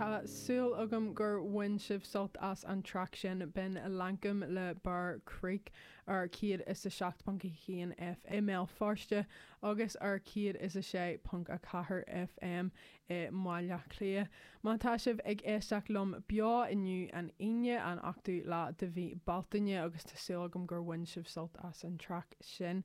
Tá súil agam gur bhain sibh sult as an traic sin b'in Lankum le Bear Creek ar 107.1 FM i mBéal Feirste agus ar 106.4 FM i mBaile Átha Cliath, má tá sibh ag éisteacht liom beo inniu, an Aoine, an 8ú lá de mhí Bealtaine, agus tá súil agam gur bhain sibh sult as an traic sin,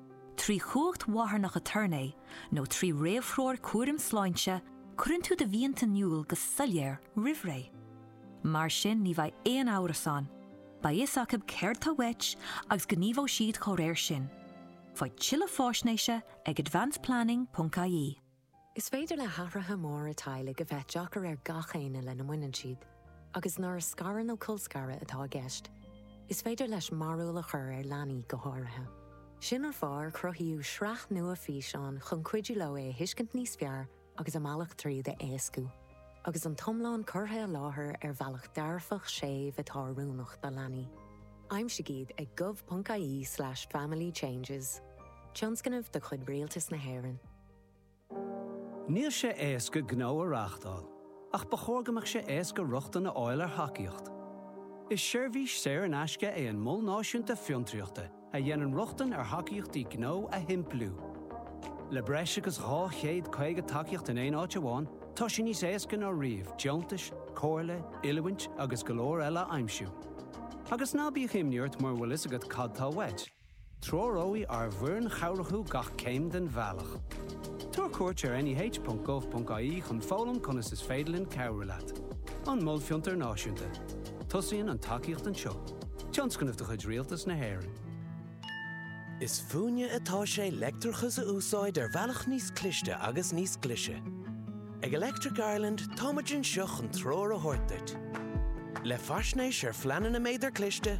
Trí chumhacht mharthanach aturnae nó trí réamhthreoir cúraim sláinte, cuireann tú do mhianta in iúl go soiléir roimhré. Mar sin ní bheidh aon amhras ann, beidh a fhios acu céard atá uait agus gníomhóidh siad dá réir sin. Faigh tuilleadh faisnéise ag advanceplanning.ie. Is féidir le hathruithe móra teaghlaigh a bheith deacair ar gach éinne lena mbaineann siad, agus nuair is scaradh nó colscaradh atá i gceist, is féidir leis mearbhall a chur ar leanaí go háirithe. Sin an fáth ar cruthaíodh sraith nua físeán chun cuidiú leo é a thuiscint níos fearr agus a mbealach tríd a éascú, agus an t-iomlán curtha i láthair ar bhealach dearfach séimh atá oiriúnach do leanaí. Aimsigh iad ag gov.ie slash family changes, tionscnamh de chuid Rialtas na hÉireann. Níl sé éasca gnó a reáchtáil, ach ba chóir go mbeadh sé éasca rochtain a fháil ar thacaíocht. Is seirbhís saor in aisce é an Mol Náisiúnta Fiontraíochta a dhéanann rochtain ar thacaíochtaí gnó a shimpliú. Le breis agus 250 tacaíocht in aon áit amháin, tá sé níos éasca ná riamh deontais, comhairle, oiliúint agus go leor eile a aimsiú. Agus ná bíodh imní ort mura bhfuil a fhios agat cad tá uait, Treoróidh ár bhfoireann chabhrach thú gach céim den bhealach. Tabhair cuairt ar neh.gov.ie chun foghlaim conas is féidir linn cabhrú leat. An Mol Fiontair Náisiúnta. Tosaíonn an tacaíocht anseo. Tionscnamh de chuid Rialtas na hÉireann. Is fúinne atá sé leictreachas a úsáid ar bhealach níos cliste agus níos glise. Ag Electric Ireland táimid anseo chun treoir a thabhairt duit. Le faisnéis ar phleananna méadair chliste,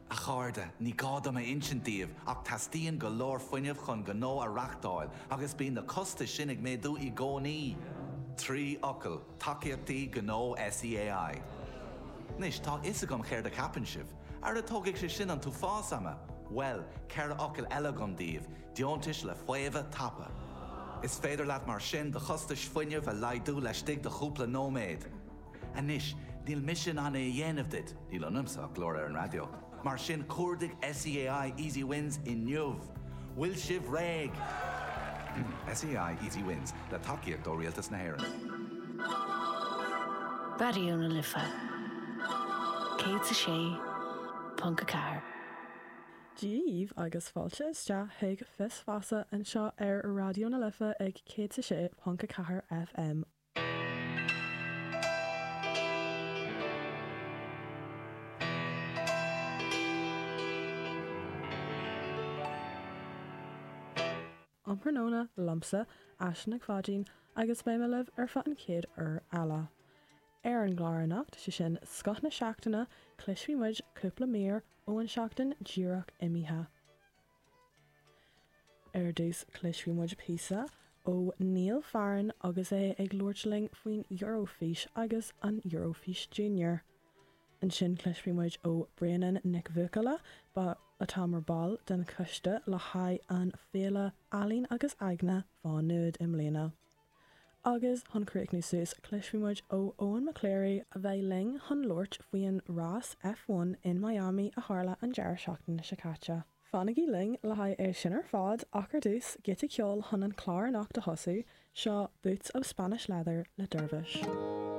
A chairde, ní gá dom a insint daoibh ach teastaíonn go leor fuinnimh chun gnó a reáchtáil agus bíonn na costais sin ag méadú i gcónaí. Trí fhocal, tacaíochtaí gnó SEAI. Anois, tá a fhios agam céard a cheapann sibh. Ara tógfaidh sé sin an t-uafás ama! Bhuel, ceithre fhocal eile agam daoibh, deontais le faomhadh tapa. Is féidir leat mar sin do chostais fuinnimh a laghdú laistigh de chúpla nóiméad. Anois, níl mise in ann é a dhéanamh duit, níl ionamsa ach glór ar an raidió, mar sin cuardaigh SEAI Easy Wins inniu. Bhfuil sibh réidh? SEAI Easy Wins, le tacaíocht ó Rialtas na hÉireann. Raidió na Life 106.4. Daoibh agus fáilte isteach chuig Fios Feasa anseo ar Raidió na Life ag 106.4 FM Um thráthnóna liomsa Aisling Nic Pháidín agus beidh mé libh ar feadh an chéad uair eile. Ar an gclár anocht, sé sin, Scoth na Seachtaine, cloisfidh muid cúpla mír ó an seachtain díreach imithe. Ar dtús, cloisfidh muid píosa ó Neil Farren agus é ag labhairt linn faoin Eurofís agus an Eurofís Junior. Ansin cloisfidh muid ó Bríanann Nic Bhuachalla, atá mar ball den choiste le haghaidh an Féile Ealaín agus Aigne Mhá Nuad i mbliana. Agus chun críochnú suas, cloisfidh muid ó Eoin McCleary, a bheidh linn chun labhairt faoin rás F1 in Miami a tharla an deireadh seachtaine seo caite. Fanaigí linn le haghaidh é sin ar fad ach ar dtús, giota ceoil chun an clár anocht a thosú, seo Boots of Spanish Leather le Dervish.